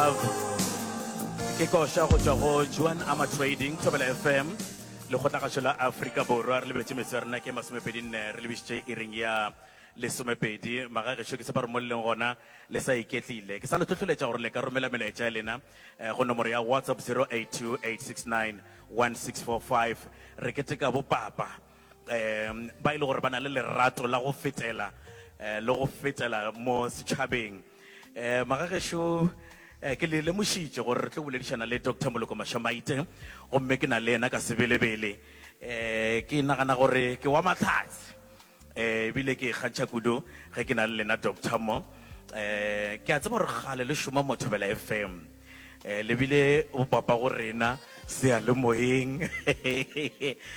Love ke koša go tšwa go Juan Ama Trading Thobela FM lekgotlagašo la Afrika Borwa re lebetše metso ya rena ke masomepedi nne re lebišitše iring ya lesomepedi maga gešo ke sepa re mo leng gona le sa iketlile ke sa le tlhohleletša gore le ka romela melaetša ya lena eh, go nomoro ya WhatsApp 0828691645 re keteka bopapa um ba e le gore ba na le lerato la go fetela eh, le go fetela mo setšhabeng Eh, magagešo eh, ke le lemošitše gore re tlo boledišana le dr moloko mashamaite gomme ke na le ena ka sebelebele eh, ke nagana gore ke wa matlhatse eh, ebile ke kgantšha kudu ge ke na le lena doctor mo eh, ke a tseba gore gale le šoma mothobela fm Eh, le bile bopapa go rena seyalemoyeng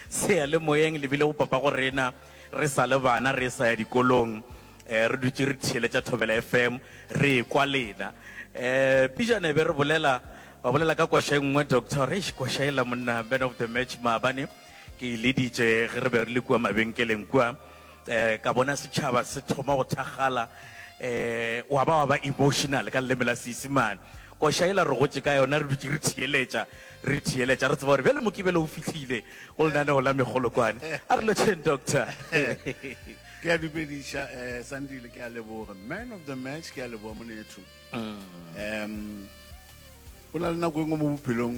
seyalemoyeng le bile bopapa go rena re sa le bana re sa ya dikolong um re dutse re theeletša thobela fm re kwa lena um pijane be re bolela ba bolela ka kwasha e nngwe doctor re kwasha ela monna man of the match maabane ke e leditše ge re be re le kua mabenkeleng kua ka bona setšhaba se thoma go thakgala um wa ba wa ba emotional ka leleme la seisimane koša e la re gotše ka yona re dutse re theeletša re theeletša re tseba gore bjale mokibelo o fihlile go lenaneo la megolokwane a re lotšheng doctor ke a dumediša um eh, sandile ke a leboga man of the match ke a leboga monetho um mm. go na le nako e nngwe mo bophelong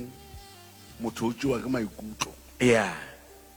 motho o tsewa ke maikutlo ya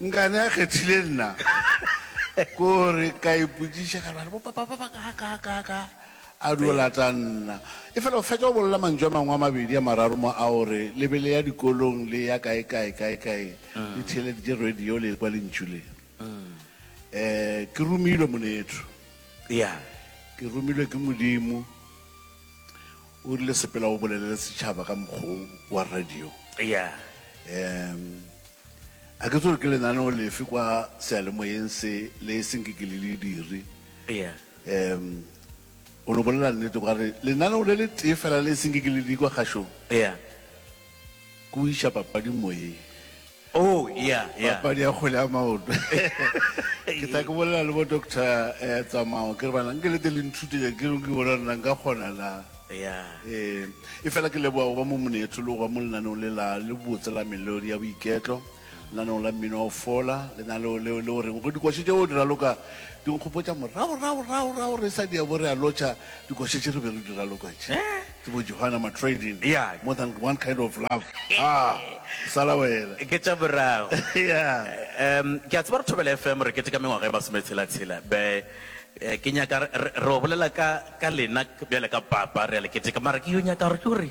Nkane a kgethile nna ko re ka ipotsiša ka bjale bopapa ba ba ka ka ka ka a dio lata nna e fela o fetša go bolela mantšu a mangwe a mabedi a mararo mo a o re le be le ya dikolong le ya kae kae kae kae le theeleditše radio le kwa lentšu le um ke romilwe monetho ya ke romilwe ke modimo O rile sepela o bolelele setšhaba ka mokgo wa radio. Eya. Um, a ke tsore ke lenaneo lefe kwa sealemoyeng se le e seng ke ke le le dire. Eya. Um, o no bolela nnete kwa re lenaneo le le tee fela le e seng ke ke le di kwa kgašong. Eya. Ke o iša papading moyeng. Oh, ya, ya. Papadi ya kgwele ya maoto. Ke tla ke bolela le bo doctor eh, tsamao ke re bana nke le te le nthutenya ke re ke bona rena nka kgona na. Ya. Eh, e fela ke leboga go ba mo monetho le go ba mo lenaneo le la le botse la melodi ya boiketlo. Lenaneong la mmino wa go fola, lenaleo leo le o reng go dikoše tšeo di raloka di nkgopotša moragoragoragorago re sa diabo re a lotšha dikoše tše re be re di raloka tše ke bo Johanna Matrading, More Than One Kind of Love. Haa, sala wena. Ke tša morago. Ke a tseba gore Thobela FM re keteka mengwaga e masometshela-tshela. Be ke nyaka re o bolela ka lena bjale ka papa, re a le keteka. Mara ke yo nyaka gore ke gore.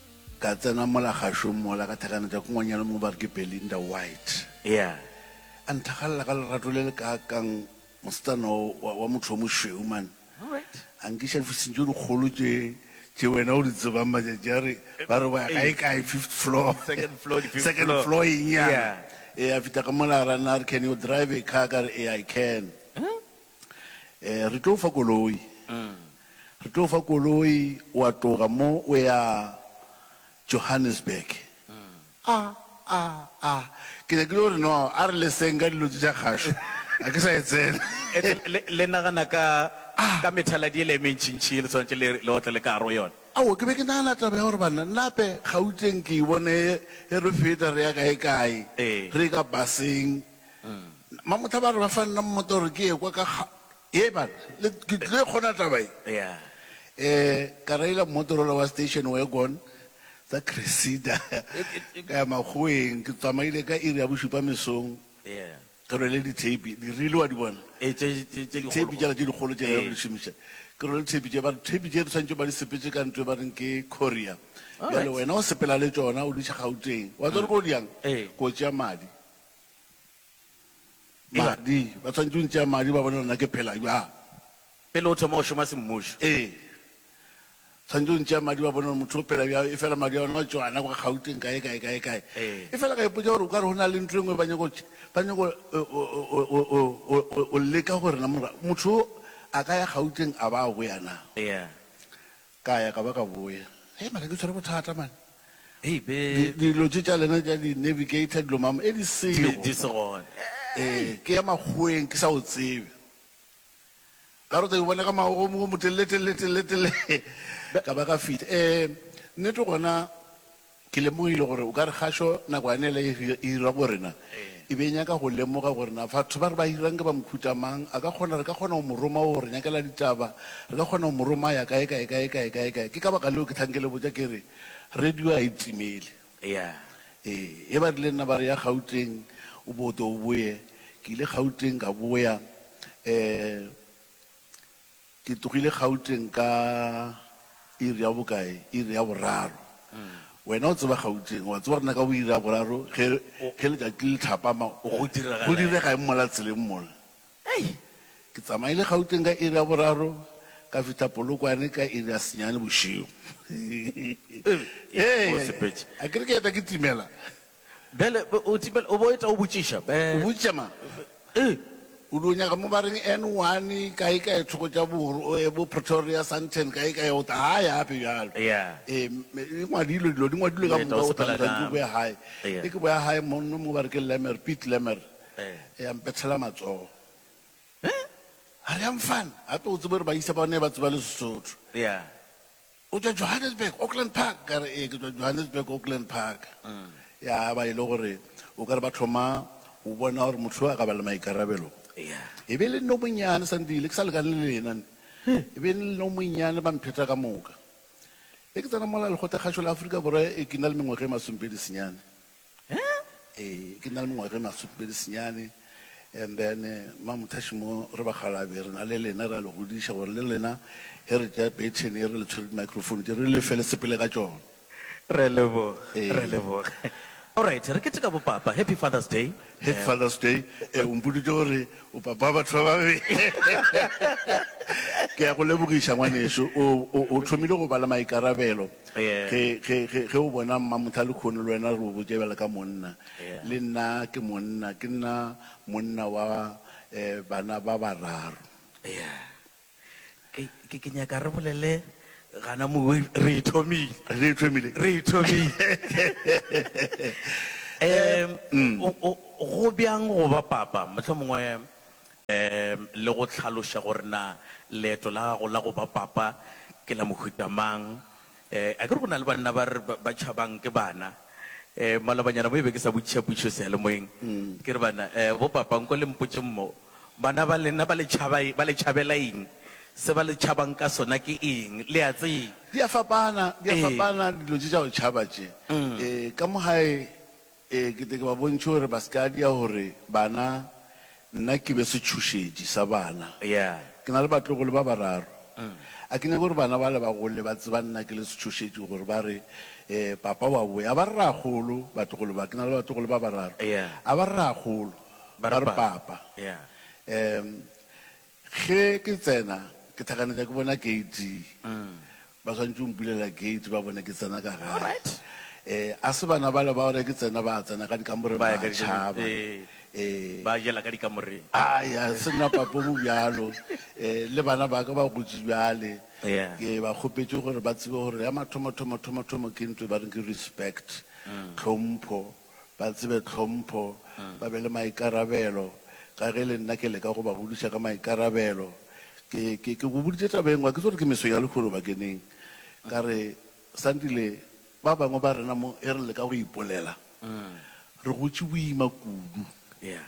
Ka tsena mola gašo mola ka thakana tša kongwanyana mo ba re ke Belinda White. Ea a nthakgalela ka lerato le le kaakang mosetsana o wa, wa motho yo mošweu mane. A nkiša difising tše dikgolo tše, tše wena o di tsebang matšatši a re, ba re o ya kaekae, fifth floor, second floor eng yana. Ea a fihla ka mola a ra nna a re, Can you drive a car? Ka re, Ea, I can. Re tlo o fa koloi. Re tlo o fa koloi, wa tloga mo o ya Johannesburg. A, a, a, ke nyakile go re no, a re leseng ka dilo tše tša kgašo, ga ke sa e tsena. Ete le, le nagana ka, ka methaladi yela e mentšintši ye le swanetše le, le otle le ka gare go yona. Aowa, ke be ke nagana taba ya gore ba nape Gauteng ke e bone ge re feta re ya kae-kae, re ye ka baseng. Mamohla ba re ba fa nna mmota gore ke ye kwa ka ga ye ba le ke tlile kgona taba e yeah eh ka raila mmotorola wa station wagon tsa Cressida ka ya makgoeng ke tsamaile ka iri ya bošupa mesong yeah ke rwele dithape di rile wa di bona e tse tse tse di dithape jala tse dikgolo tše Ee. re di šomiša ke rwele dithape tše ba re thape tše di swantše ba di sepetse ka ntlo e ba reng ke courier Alright. bjale wena o sepela le tšona o di tšha gauteng wa tswa re ko di yang Ee. ko tšea madi Madi. Ba swanetše go ntšea madi ba bone gore na ke phela bjang. Pele o thoma go šoma semmušo. Ee. Swanetše go ntšea madi ba bone gore motho o phela bjang. Efela madi a bona a tšwana kwa Gauteng kae, kae, kae, kae. Ee. Efela ka ipotša gore o ka re go na le ntho e nngwe ba nyaka go, ba nyaka go, go, go, go leka gore na motho yo a ka ya Gauteng a ba a boya na. Ee. Ka ya ka ba ka boya. Hei maka ke tshwere bothata man. Hei be. Di, dilo tše tša lena tša di navigator dilo mama e di sego. Di, di se gone. Ee, ke ya makgoweng ke sa o tsebe. Ka rota ke bona ka magomo o motelele telele telele telele. Ka ba ka fihla. Ee, nnete gona Ke lemogile gore o ka re kgašo nako ya nele e hira go rena e be e nyaka go lemoga gore na fatho ba re ba hirang ke ba mokhuta mang, a ka kgona, re ka kgona go mo roma go re nyakela ditaba, re ka kgona go mo roma a ya kae, kae, kae, kae, kae, kae. Ke ka baka leo ke tlhang ke le botša ke re radio a e timele. Ee, ge ba rile nna ba re ya Gauteng o bo tle o boye, ke ile Gauteng ka boya, um. Ke tlogile Gauteng ka iri ya bokae, iri ya boraro. Wena o tseba Gauteng, wa tseba gore na ka bo iri ya boraro ge, ge letšatši le thapama, go, Go direga go eng? direga eng mola tseleng mola. Hei, ke tsamaile Gauteng ka iri ya boraro, ka fihla Polokwane ka iri ya senyane bošego. Ee, Ee, Mosepetše. a ke re ke eta ke timela. Bjale, o timela, o bo eta o botšiša, be. O botšiša mang? Ee. O di o nyaga mo ba reng N one, kae kae, thoko tša boro, o ye bo Pretoria, Sandton, kae kae, o ta gae gape bjalo. Eya. Ee, mme, e ngwadilwe, dilo di ngwadilwe ka moka, o ta ntwa ntse o boya gae. Eya. E ke boya gae monno mo ba re ke Lemmer, Piet Lemmer. Eya. Eya, a mpethela matsogo. He? A re, Yang fan, gape o tsebe gore ba isa ba ne ba tseba le Sesotho. Eya. O tšwa Johannesburg, Auckland Park? Ka re, Ee, ke tšwa Johannesburg, Auckland Park. Ya ba e le gore o ka re ba thoma go bona gore motho yo a ka ba le maikarabelo. E be e le nna o monnyane, Sandile, ke sa lekane le lena. E be e le nna o monnyane, ba mpheta ka moka. Ge ke tsena mola Lekgotlakgašo la Afrika Borwa e ke na le mengwaga e masomepedi senyane. Ee, ke na le mengwaga e masopedi senyane, and then Mma Muthashi mo re bakgalabje re na le lena, ra le godiša gore le lena ge re tšea baton ye re le tshwere di-microphone tše re le fe le sepele ka tšona. Re a leboga, re a leboga. Alright, re keteka bo Papa. Happy Father's Day. Happy Father's Day. Eh, o mpoditše gore o papa wa batho ba babedi. Ke ya go lebogiša ngwaneso. O, o, o thomile go ba le maikarabelo. Yeah. Ge, ge, ge, ge o bona Mmamotha le Khono le wena re o botše bjale ka monna. Yeah. Le nna ke monna, ke nna monna wa eh, bana ba bararo. Yeah. Ke, ke, ke nyaka re bolele gana mowe, re e thomile. Re e thomile. Re e thomile. Em, mm. o, o, go bjang go ba papa? Mohlomongwe em, le go hlaloša gore na leeto la gago la go ba papa ke la mohuta mang? Eh, akere go na le banna ba re ba, ba tšhabang ke bana. Eh, malobanyana mo e be ke sa botšiša pušo seyalemoyeng. Ke re bana, eh, bo papa nko le mpotšeng mo, bana ba lena ba le tšhaba, ba le tšhabela eng? Se ba le tšhabang ka sona ke eng? Le a tseba. Di a fapana, di a Ee. fapana dilo tše tša go tšhaba tše. Eh, ka mo gae E kete ke ba bontšhe gore ba se ka dia gore bana nna ke be setšhošetši sa bana. Ke na le batlogolo ba bararo. A ke nyake gore bana bale ba gole ba tseba nna ke le setšhošetši gore ba re, Papa wa boya. A ba re rraagolo batlogolo ba. Ke na le batlogolo ba bararo. A ba re rraagolo, ba re papa. Ge ke tsena, ke hlakanetša ke bona gate. Ba swanetše go mpulela gate ba bone ke tsena ka gae. Eh, a se bana bale ba gore ke tsena ba tsena ka dikamoreng ba tšhaba. Eh. Ba jela ka dikamoreng. Ai, a se nna papa o mo bjalo. Eh, le bana ba ka ba gotše bjale. Ke ba kgopetše gore ba tsebe gore ya mathomo-thomo-thomo-thomo ke ntho e ba reng ke respect, tlhompho. ba tsebe tlhompho, ba be le maikarabelo, ka ge le nna ke leka go ba godiša ka maikarabelo. Ke, ke, ke go boditše taba e nngwe, ga ke tso re ke meso ya lehono bakeneng, ka re, Sandile, ba bangwe ba rena mo ge re leka go ipolela, re gotše boima kudu. Yeah.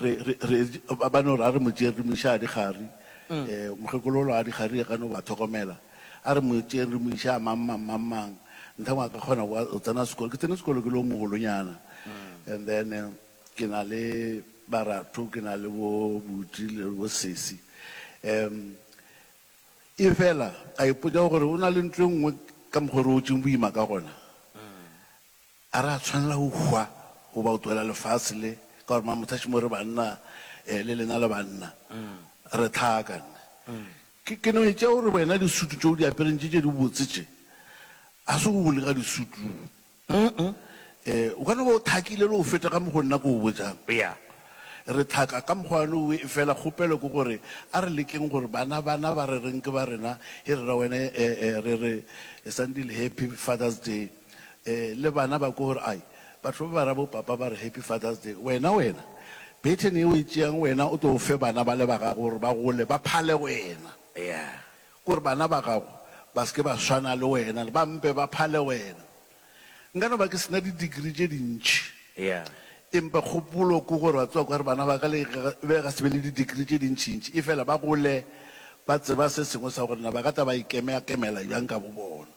Re, re, re, ba, ba no re a re mo tšeeng re mo iša a dikgari. E, mokgekololo a dikgari e gano ba thokomela. A re mo tšeeng re mo iša a mang mang mang mang. Nthangwe a ka kgona go go tsena sekolo. Ke tsene sekolo ke le o mogolonyana. And then eh, ke na le baratho, ke na le bo Buti le bo Sesi. Um, e fela ka ipotša gore o na le ntlo e nngwe ka mokgwa o re otšeng boima ka gona. A re a tshwanela go hwa goba go tlogela lefase le, ka gore mang mothaši mo re banna eh, le lena le banna re tlhaakan. Ke, ke no etša gore wena disutu tše o di apereng tše tše dibotse tše, ga se go bole ka disutu eh, o ka no ba o thakile le go feta ka mokgo nna ke o botšang. Ya. Re tlhaka ka mokgwa one owe, efela kgopelo ke gore a re lekeng gore bana, bana ba re reng ke ba rena he re ra wena eh, eh, re re Sandile Happy Father's Day. Ee, le bana ba kwe gore, Ai, batho ba ba ra bo-papa ba re Happy Father's Day. Wena, wena, bethe ne e o e tšeang wena o tlo o fe bana bale ba gago gore ba gole ba phale wena, ya, ke gore bana ba gago ba se ke ba swana le wena le ba mpe ba phale wena. Nka no ba ke sena di-degree tše dintši, ya, empa kgopolo ke gore wa tseba kore bana ba ka le ge ga se be le di-degree tše dintšintši efela ba gole ba tseba se sengwe sa gore na ba ka tla ba ikemea-kemela bjang ka bobona.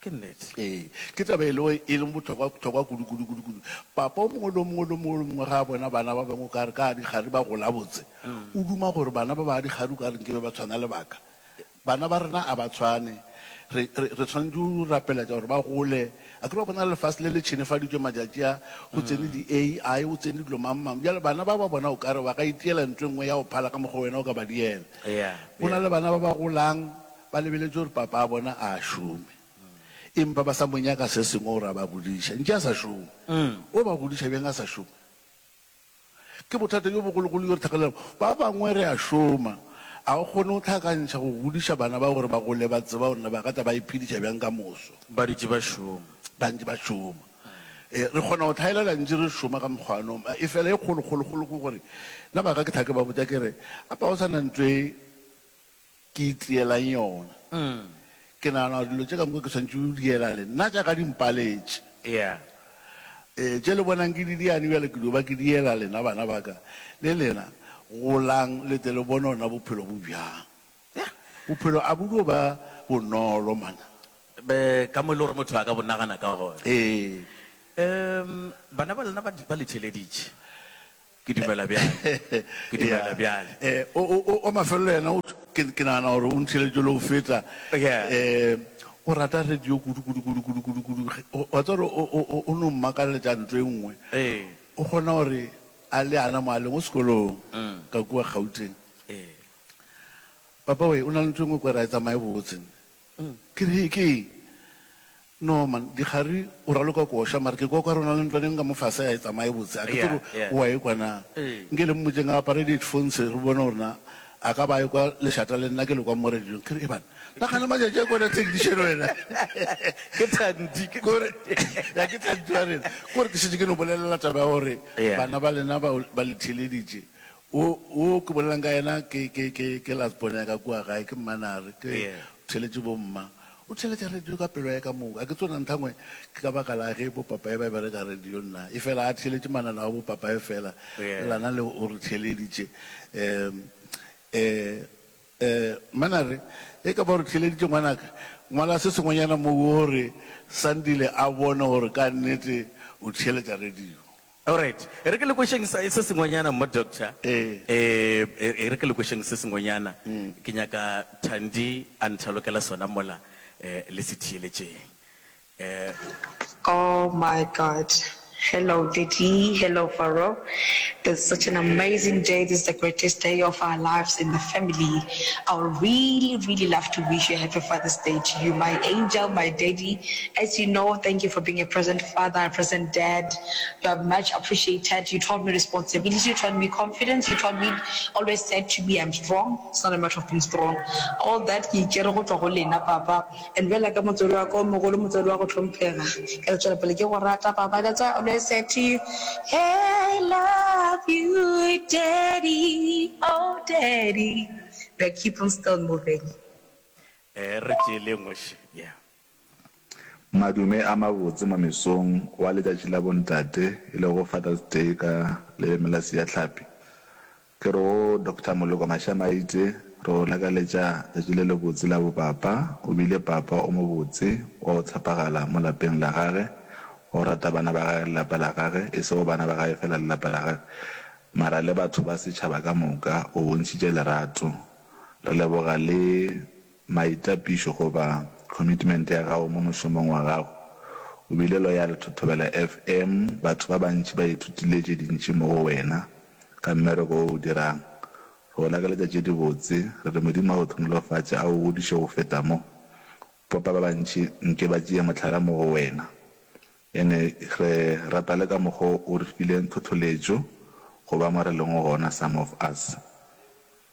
Ke nnete. Ee, ke taba e lego e leng bohlokwa-hlokwa kudu, kudu, kudu, kudu. Papa o mongwe le o mongwe, le o mongwe, le o mongwe ge a bona bana ba bangwe o ka re ka dikgari ba gola botse, o duma gore bana ba ba dikgari o ka re nke be ba tshwana le ba ka. Bana ba rena a ba tshwane. Re, re, re swanetše go rapeletša gore ba gole. A kere wa bona lefase le le tšhenefaditšwe matšatši a, go tsene di-AI, go tsene dilo mang-mang. Bjale bana ba ba bona o ka re ba ka itiela ntho e nngwe ya go phala ka mokgwa wena o ka ba diela. Go na le bana ba ba golang, Ba lebeletše gore papa a bona a šome, empa ba sa mo nyaka se sengwe gore a ba godiša ntše a sa šome. O ba godiša bjang a sa šome? Ke bothata bjo bogologolo bjo re tlhagelela bjona. Ba bangwe re a šoma, ga re kgone go hlakantšha go godiša bana bao gore ba gole ba tseba gore na ba ka tla ba iphediša bjang ka moso. Ba dutše ba šoma. Ba ntše ba šoma. Ee, re kgona go hlaelela ntše re šoma ka mokgwa wa noma. Efela e kgolo-kgolo-kgolo ke gore, nna ba ka ke hlake ba botša ke re, A pa o sa na ntlo e Ke itseelang yona. Ke nagana gore dilo tše ka moka ke swanetše go di ela le nna jaaka di mpaletše. Ee, tše le bonang ke di diane bjale ke dio ba ke di ela lena bana ba ka. Le lena, golang le tle le bone gona bophelo bo bjang. Yah, bophelo a bo dio ba bonolo monna. Be, ka mo e le gore motho a ka bo nagana ka gona. Ee. Ee, bana ba lena ba, ba le theeleditše. Ke dumela bjale. Ke dumela bjale. E, o, o, o, wa mafelelo yena, o, ke, ke nagana gore o ntheletše le go feta. Yeah. E, o rata radio kudu, kudu, kudu, kudu, kudu, kudu. Ge- o- Wa tseba gore o, o, o, o no mmakaletša nto e nngwe. Ee. O kgona gore a le ana mo a leng o sekolong, Mm. ka kua Gauteng. Ee. Papa we, o na le nto e nngwe kwere a e tsamaye botse. Ke re, Ke eng? No, man, dikgari o raloka koša, mare ke kwa kwa re na le ntlwaneng ka mofase ga e tsamaye botse. A ke tsebe gore o a ekwa na. Nke le mmotšeng a apare di-headphones re bone gore na a ka ba a ekwa lešata le nna ke le kwa mo radiong. Ke re, Eban, nagana matšatši a kwana technician wena. Ke Thandi. Ke gore, Ya, ke Thandi wa rena. Ke gore ke šetše ke no bolelela taba ya gore bana ba lena ba le theeleditše. Wo, wo ke bolelago ka yena ke, ke, ke, ke last born ya ka kua gae, ke Mmanare, ke Yeah. theletše bomma. O theletša radio ka pelo ya ka moka. A ke tsona nthangwe ke ka baka la ge bopapaye ba bereka radio nna. Efela a theletše mananao a bopapaye fela, Yeah. le lana le o re theleditše. Um, eh, eh, Mmanare, e ka ba o re theleditše ngwanaka, ngwala se sengwenyana mo wo re Sandile a bone gore ka nnete o theletša radio. Alright, e re ke le kwešeng sa se sengwenyana mma doctor. Ee. E re ke le kwešeng se sengwenyana. Ke nyaka Thandi a nthalokela sona mola le se theeletšeng. Oh my God, hello Daddy, hello Faro, it's such an amazing day, this is the greatest day of our lives in the family, I would really really love to wish you happy Father's Day to you my angel, my Daddy, as you know, thank you for being a present father, a present dad. You are much appreciated, you taught me responsibility, you taught me confidence, you taught me always said to me I'm strong, it's not a matter of being strong, all that ke e tšere go tšwa go lena papa, and bjale ka motswadi wa ka o mogolo, motswadi wa go hlomphega, ke tla tšwela pele ke go rata papa, that's why I always said to you, I love you daddy, oh daddy, we are keep on still moving. Ee, re tšee le engwe še, yeah. Madume a mabotse mo mesong wa letšatši la bontate e lego Father's Day ka leleme la Seahlapi. Ke re go Doctor Moloko Mashamaite re o lakaletša tšatši le lebotse la bopapa, o bile papa o mobotse wa go tshepagala mo lapeng la gage, wa go rata bana ba gage le lapa la gage, e sego bana ba gage fela le lapa la gage mara le batho ba setšhaba ka moka, o bontšhitše lerato. Re leboga le. Maitapišo goba commitment ya gago mo mošomong wa gago. O bile loyal to Thobela FM, batho ba bantši ba ithutile tše dintši mo go wena ka mmereko wo o dirang. Re go lakaletša tše dibotse, re re Modimo a go hlonolofatše a go godiše go feta mo. Popa ba bantši nke ba tšee mohlala mo go wena. Ene re rata le ka mokgo o re fileng thotholetšo go ba mo re lego gona, some of us.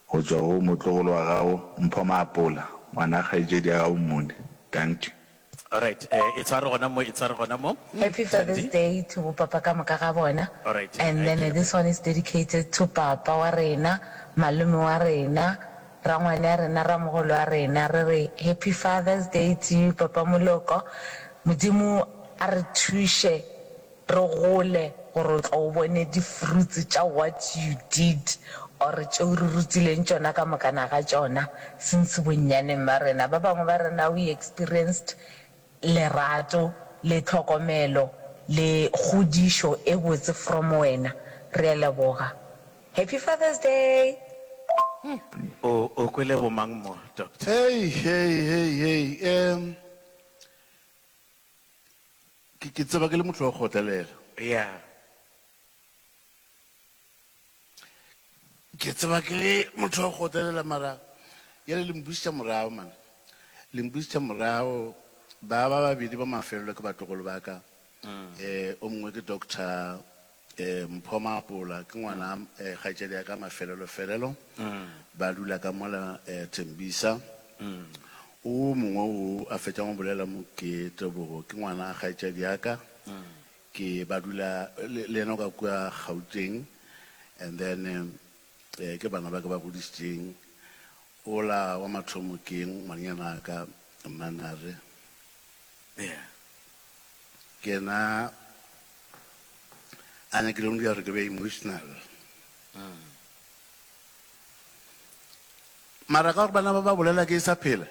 Go tšwa go motlogolo wa gago Mpho Maapola, ngwana kgaetšedi ya gago Mmone. Dankie. Alright, e tshware gona mo, e tshware gona mo. Happy Father's Day to bo papa ka moka ga bona and then this one is dedicated to papa wa rena, malome wa rena, rangwane ya rena, ramogolo wa rena, re re Happy Father's Day to you papa Moloko, Modimo a re thuše Re gole gore o tlo o bone di fruits tša what you did or tšeo re rutileng tšona ka mokana ga tšona since bonnyaneng ba rena. Ba bangwe ba rena we experienced lerato le tlhokomelo le kgodišo e botse from wena. Re a leboga. Happy Father's Day! O o kwele bomang mo, Doctor? Hei, hei, hei, hei, em. Ke, ke tseba ke le motho wa go kgotlelela. Ya. Ke tseba ke le motho wa go kgotlelela mara yale le mbušitša morago man. Le mbušitša morago ba ba babedi ba mafelelo ke batlogolo ba ka. Eh, o mongwe ke Doctor Mpho Maapola ke ngwana kgaetšadi ya ka Mafelelo-felelo, ba dula ka mola Tembisa. O mongwe o a fetšang go bolela mo ke Tebogo, ke ngwana kgaetšadi ya ka, ke ba dula le yena o ka kua Gauteng and then ke bana ba ke ba godišitšeng. O la wa mathomo ke ngwanenyana wa ka Mmanare, ke yena a ne ke leng dira gore ke be emotional mara ka gore bana ba ba bolela ke e sa phela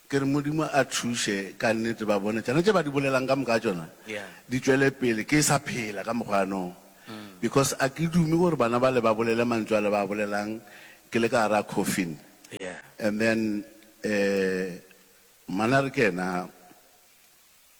ke re modimo a thuše ka nnete ba bone tsona tse ba di bolelang ka moka tsona di tšwele pele ke e sa phela ka mokgwanong because a ke dume gore bana ba le ba bolele mantswe a le ba bolelang ke le ka gara coffin and then um mana re kena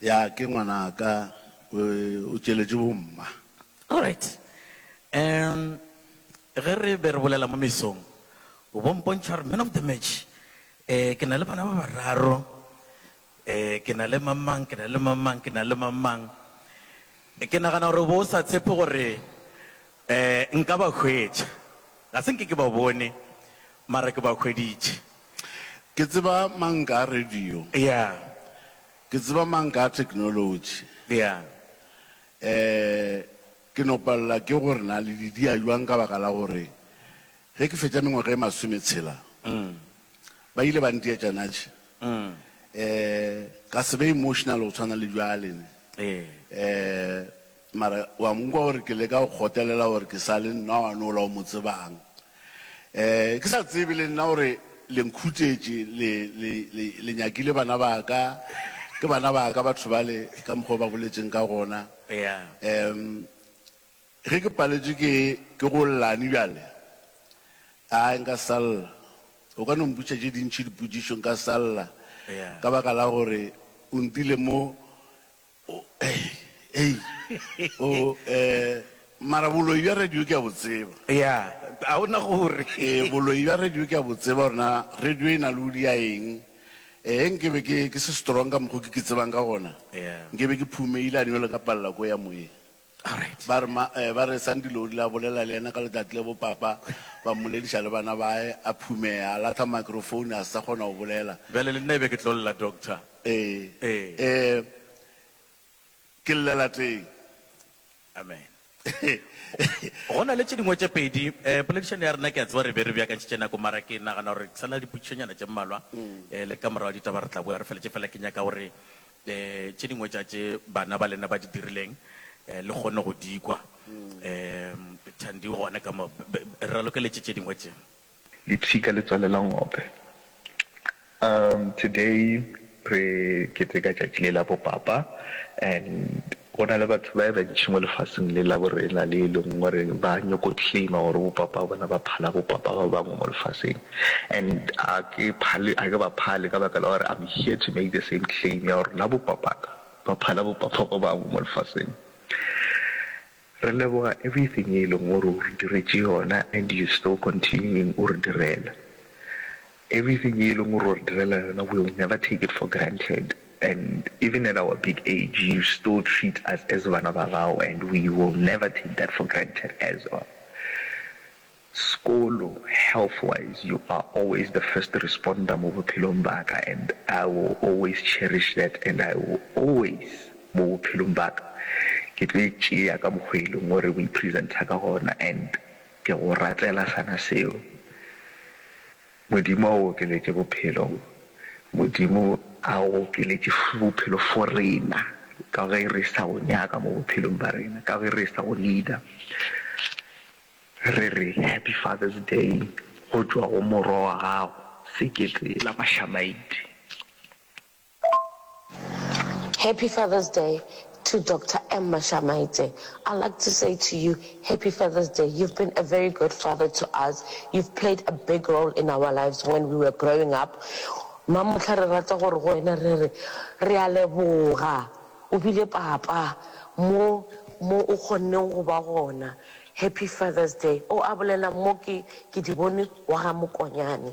Ya, ke ngwanaka. O, o tšeletše bomma. All right. Um, ge re be re bolela mo mesong, o bo mpontšha gore man of the match, eh, ke na le bana ba bararo, eh, ke na le mamang, ke na le mamang, ke na le mamang. Ke nagana gore o bo o sa tshepe gore, eh, nka ba hwetša. Ga se nke ke ba bone, mara ke ba hweditše. Ke tseba mang ka radio? Yeah. Ke tseba mang ka technology? Yeah. Eh, ke no palela ke gore na le di dia jwang ka baka la gore ge ke fetša mengwaga e masome tshela, ba ile ba nteetša natše. Eh, ka se be emotional go tshwana le bjale ne. Eh, Mara wa mo kwa gore ke leka go kgotelela gore ke sa le nna wa nola o mo tsebang. Eh, ke sa tsebe le nna gore le nkhutetše, le, le, le, le nyakile bana ba ka. Ke bana ba ka batho bale, ka mokgwa o ba boletšeng ka gona. Eya. Um, ge ke paletšwe ke, ke go llane bjale, ai, nka sa lla. O ka no mpotšiša tše dintši dipotšišo, nka sa lla. Eya. Ka baka la gore o ntile mo, O, ei, ei, o, eh, mara boloi bja radio ke a bo tseba. Ya, ga o na gore. E, boloi bja radio ke a bo tseba gore na radio e na le udi ya eng. Eh, nke be ke, ke se strong ka mokgo ke ke tsebang ka gona. Ya. Nke be ke phumeile a nywelo ka palla ko ya moyeng. Ba re, ma, eh, ba re Sandy le o rile a bolela le yena ka letati le bopapa, ba mmolediša le bana bae, a phumeya, a lahla microphone, a se sa kgona go bolela. Bjale le nna e be ke tlo lla, Doctor. Ee, Ee. ee, ke llela teng. Amen. Go na le tše dingwe tše pedi, eh, poledišano ya rena ke a tseba re be re beakantšhitše nako, mara ke nagana gore ke sa na le dipotšišonyana tše mmalwa, eh, le ka morago ditaba re tla boya re feletše. Fela ke nyaka gore Le tše dingwe tša tše bana ba lena ba di dirileng, le kgonne go di kwa. Thandi o gona ka mo. Re ralokeletše tše dingwe tše. Lipsika le tswalela ngope. Today re keteka tšatši le la bo papa and Go na le batho ba bantši mo lefaseng le la borena le e leng gore ba nyoko claima gore bo papa bona ba phala bo papa ba bangwe mo lefaseng and a ke phale a ke ba phale ka baka la gore I'm here to make the same claim ya gore na bo papaka ba phala bo papa ba bangwe mo lefaseng. Re leboga everything e leng gore o re diretše yona and you still continuing o re direla. Everything ye eleng gore o re direla yona we will never take it for granted and even at our big age you still treat us as bana ba gago and we will never take that for granted as well. Sekolo, health wise you are always the first responder mo bophelong ba ka and I will always cherish that and I will always mo bophelong ba ka ke tlo e tšea ka mokgo e leng gore o e presenter ka gona and Ke go ratlela sana seo. Modimo a o okeletše bophelo. Modimo a o okeletše bophelo for rena, ka ge re sa o nyaka mo bophelong ba rena, ka ge re sa o need-a. Re re Happy Father's Day go tšwa go Morwa wa gago, Sekete la Mashamaite. Happy Father's Day to Doctor Emma Shamaite I like to say to you Happy Father's Day you've been a very good father to us you've played a big role in our lives when we were growing up mma mohla re rata gore go wena re re re a leboga o bile papa mo mo o kgonne go ba gona Happy Father's Day o a bolela mo ke ke di bone wa ga Mokonyane.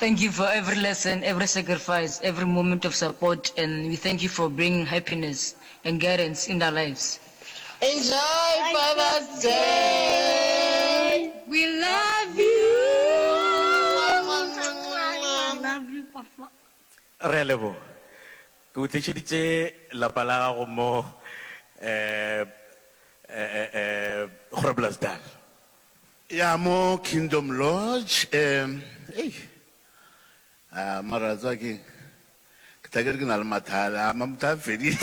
Thank you for every lesson, every sacrifice, every moment of support and we thank you for bringing happiness and guidance in our lives. Enjoy Father's Day! We love you! We love you papa. Re a leboga. Ke o tlišeditše lapa la gago mo Groblersdal. Ya mo Kingdom Lodge e, ei, a mara wa tseba keng, ke tla ke re ke na le mathale, a mamtha a fedile.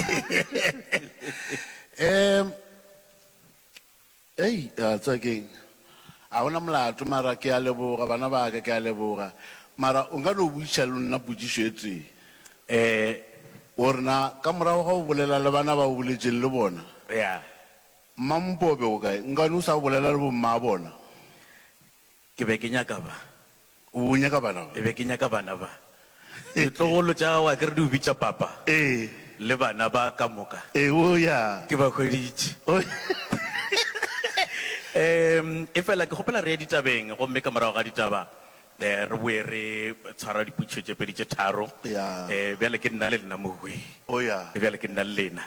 Um, ei, a tseba keng, a gona molato mara ke a leboga bana ba ka, ke a leboga mara o nka no botšiša le nna potšišo e tee, um, gore na ka morago ga go bolela le bana ba o boletšeng le bona, ya. Mmampo o be o kae? Nkane o sa bolela le bommaabona? Ke be ke nyaka ba. O be o nyaka bana ba? E be ke nyaka bana ba. Ditlogolo tša gago a ke re di o bitša papa? Ee. Le bana ba ka moka? Eoya. Ke ba hweditše. Ee, efela ke kgopela re ye ditabeng gomme ka morago ga ditaba Re boe re tshwara dipotšišo tše pedi tše tharo. Bjale ke nna le lena mogwee. Bjale ke nna le lena.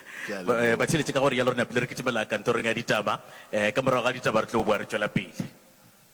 Ba theeletše ka gore, bjale re napile re kitimela kantorong ya ditaba. Ka morago ga ditaba re tlo boa re tšwela pele.